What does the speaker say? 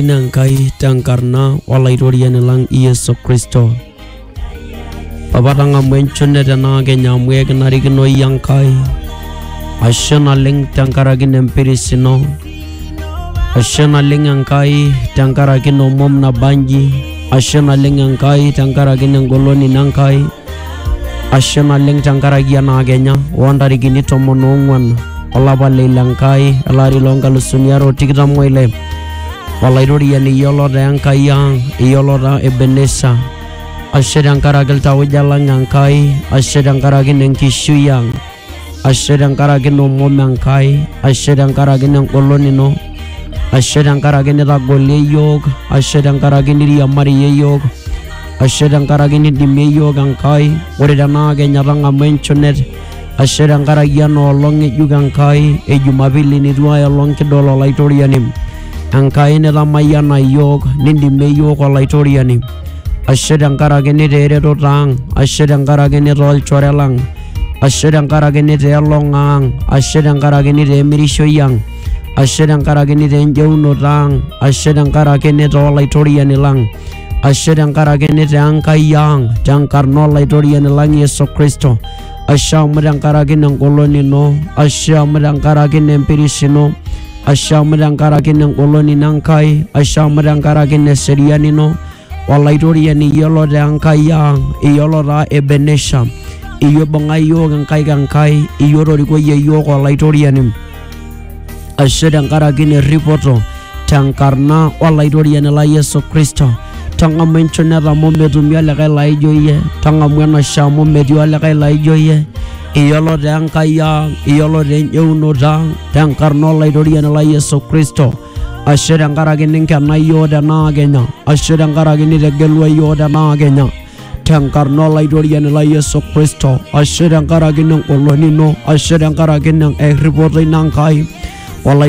Ina Enkai tenkarna olaitoriani lang Yesu Kristo. Papa tang'amu enchune tenaa kenya amu ekinarikino iyie Enkai. Ashe naleng tenkaraki ina empiris ino. Ashe naleng Enkai tenkaraki ina omom nabanji. Ashe naleng Enkai tenkaraki ina engolon ino Enkai. ashe naleng tenkaraki ena kenya oontarikini tomon oong'uan olapa le ile Enkai ele ari loonkalusuni are o tikitam oile olaitoriani iyiolo taa Enkai ang iyiolo taa Ebenesa ashe tenkaraki iltauja lang Enkai ashe tenkaraki ine nkishui ang ashe tenkaraki nomom Enkai, ashe tenkaraki nengolon ino, ashe tenkaraki nitagolie iyiook, ashe tenkaraki niriamariyie iyiook, ashe tenkaraki nidimie iyiook Enkai, ore tenaa kenya tang'amu enchunet, ashe tenkaraki ena olong ng'ejuk Enkai e Jumapili nitu ai olong kidol Olaitoriani. Enkai nitamayiana iyiook, nindimie iyiook Olaitoriani. ashe tenkaraki nitaa eretoto ang ashe tenkaraki nitaa olchore lang ashe tenkaraki nitaa elong ang ashe tenkaraki nitaa emirishoi ang ashe tenkaraki nitaa enjeunoto ang ashe tenkaraki nitaa olaitoriani lang ashe tenkaraki nitaa enkai ang tenkarna olaitoriani lang yesu kristo ashe amu tenkaraki nengolon ino ashe amu tenkaraki nempirish ino Ashamu tenkaraki ina engolon ino Enkai, ashamu tenkaraki ina eseriani ino, olaitoriani iyiolo taa Enkai ang, iyiolo taa Ebenesha, iyie oibung'a iyiook inkaik Enkai, iyie otorikoyie iyiook olaitoriani. Ashe tenkaraki ina erripoto tenkarna olaitoriani lai Yesu Kristo. Tang'amu enchoneta amu metumi olikae laijo iyie, tang'amu enashe amu metii olikae laijo iyie. Iyiolo te Enkai ang, iyiolo te enjeunoto ang, te enkarna olaitoriani lai Yesu Kristo. Ashe tenkaraki ninkena iyiook tenaa kenya, ashe tenkaraki nitegelua iyiook tenaa kenya. Tenkarna olaitoriani lai Yesu Kristo, ashe tenkaraki nengolon ino, ashe tenkaraki erripoto ino Enkai. Olaitoriani